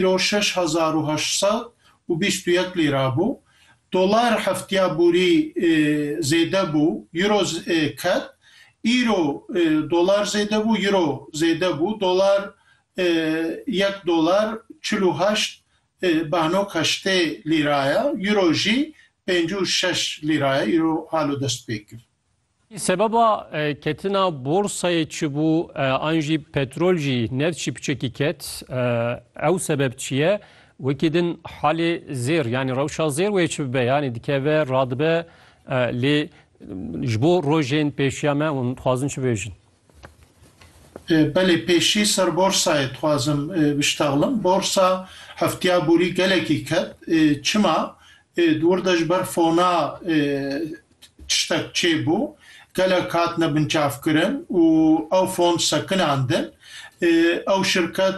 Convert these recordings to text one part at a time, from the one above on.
îro şeş hezar û heşt sed û bîst û yek lîra bû, dolar heftiya borî zêde bû, îro ket, îro dolar zêde bû, îro zêde bû, dolar yek dolar çil û heşt behnok heştê lîra ye, îro jî pêncî û şeş lîra ye, îro halo dest pê kir. Sebeba ketina borsayê çi bû an jî petrol jî neft jî piçekî ket ew sebeb çi ye? Wekî din halê zêr yanî rewşa zêr wê çi bibe yanî dikeve radibe lê ji bo rojên pêşiya me hûn dixwazin çi bêjin? Belê pêşî ser borsayê dixwazim biştexlim. Borsa hefteya borî gelekî ket. Çima? Di wir de ji ber fona tiştek çêbû. Gelek hatine binçavkirin û ew fon sekinandin. Ew şirket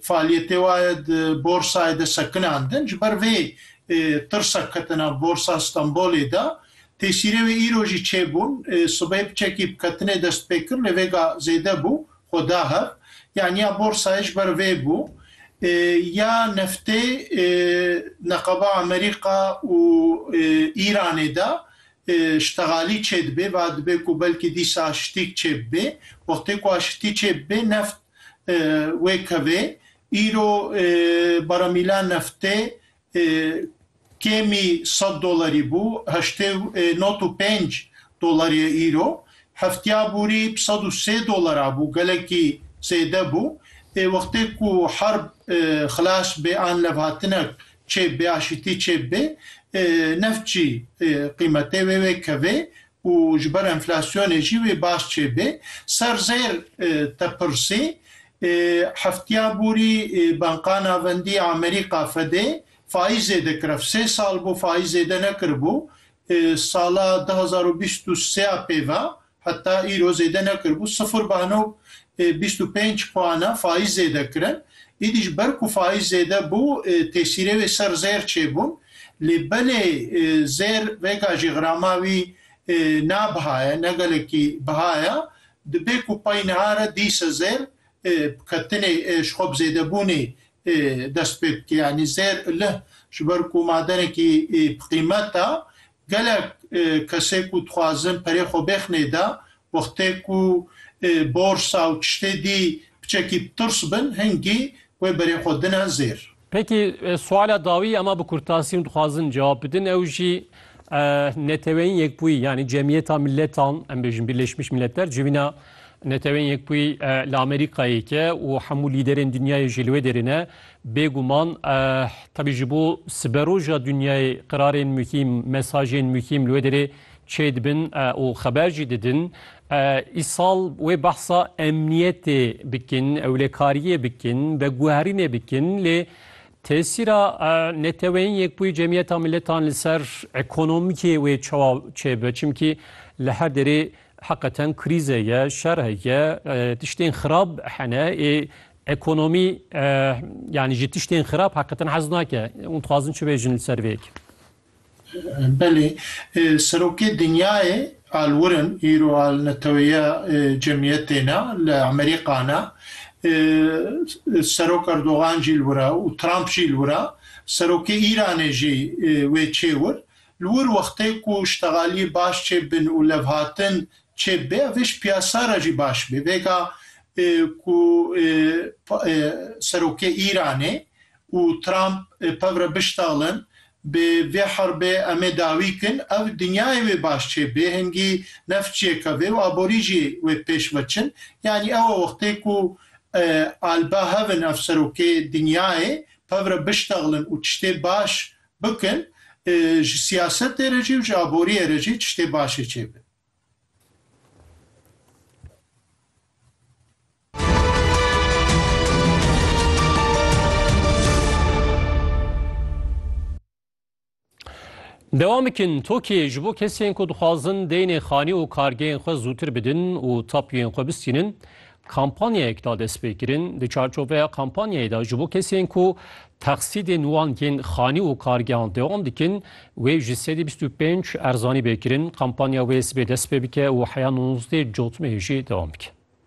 faaliyetê wa ye di borsayê de sekinandin. Ji ber vê tirsa ketina borsa Stenbolê de Tê şîrê wê îro jî çêbûn. Sibê piçekî bi ketinê destpêkirinê vêga zêde bû, xwe da hev. Yanî ya borsayê ji ber vê bû. Ya neftê neqaba Amerîka û Îranê de ştegalî çêdibê. Va dibê ku belkî dîsa şitîk çêbibê. Wextê ku a şitî çêbibê neft wê kevê. Îro baramîla neftê Kêmî sed dolarî bû, heştê û nod û pênc dolar ye îro. Heftiya borî bi sed û sê dolar a bû, gelekî zêde bû. Ê wextê ku herb xilas bê an levhatinek çêb bê, aşîtî çêb bê, neft jî qîmetê wê wê kevê û ji ber enflasyonê jî wê baş çêbê. Ser zêr te pirsî Hefteya borî Banka Navendî ya Amerîka, Fedê, faîzê dikirev. Sê sal bû faîzê de nekiribû. Sala du hezar û bîst û sê ya pê ve heta îro zêde nekiribû. Sifir banog bîst û pênc puan e faîz zêde kirin. Îdî ji ber ku faîz zêde bû tesîrê wê ser zêr çêbûn. Lê belê zêr vêga jî xirama wî ne biha ye, ne gelekî biha ye. Dibe ku pay niha re dîse zêr bi ketinê ji xwe bi zêdebûnê dest pê bike. Yanî zêr lih ji ber ku madenekî bi qîmet e. Gelek kesê ku dixwazin perê xwe bêx nêde wextê ku borsa û tiştê dî piçekî bi tirs bin hingî wê berê xwe dine zêr. Peki suala dawî ema bi kurtasî hûn dixwazin cewab bidin ew jî Neteweyên Yekbûyî yanî Cemiyeta Miletan em bêjin Birleşmiş Milletler civîna Neteweyên Yekbûyî li Amerîkayê ke û hemû lîderên dinyayê jî li wê derê ne bêguman tevî ji bo siberoja dinyayê qirarên muhîm, mesajên muhîm li wê derê Çêdibin û xeber jî didin. Îsal wê behsa emniyetê bikin, ewlekariyê bikin, veguherînê bikin lê tesîra Neteweyên Yekbûyî Cemiyeta Miletan li ser ekonomikê wê çawa çêbibe? Çimkî li her derê heqeten krîze ye, şer heye, tiştên xirab hene. Ê ekonomî yanî ji tiştên xirab heqeten hez nake. Hûn dixwazin çi bêjin li ser vê yekê? Belê, serokê dinyayê alwirin îro al neteweyîya cemîyetê ne, li Amerîka ne. Serok Erdogan jî li wir e û Trump jî li wir e. Serokê Îranê jî wê çê wir. Li wir wextê ku ştegalî baş çê bin û levhatin çê bibe ev ê ji piyasa re jî baş bê. Vêga ku serokê Îranê û Trump pevre biştalin, bi vê herbê em ê dawî kin ew dinyayê wê baş çê bê, hingî neft ciyê ke vê û aborî jî wê pêş veçin. Yanî ew e wextê ku alba hev in ev serokê dinyayê pevre biştalin û tiştê baş bikin, ji siyasetê re jî û ji aboriyê re jî tiştê başê çê be. Dewam bikin Tokiyê ji bo kesên ku dixwazin deynê xanî û kargeyên xwe zûtir bidin û tapûyên xwe bistînin kampanyayek da destpêkirin di çarçoveya kampanyayê da ji bo kesên ku texsîdên wan yên xanî û kargehan dewam dikin wê ji sedî bîst û pênc erzanî bêkirin kampanya wê sibê dest pê bike û heya nûzdê cotmeyê jî dewam bike.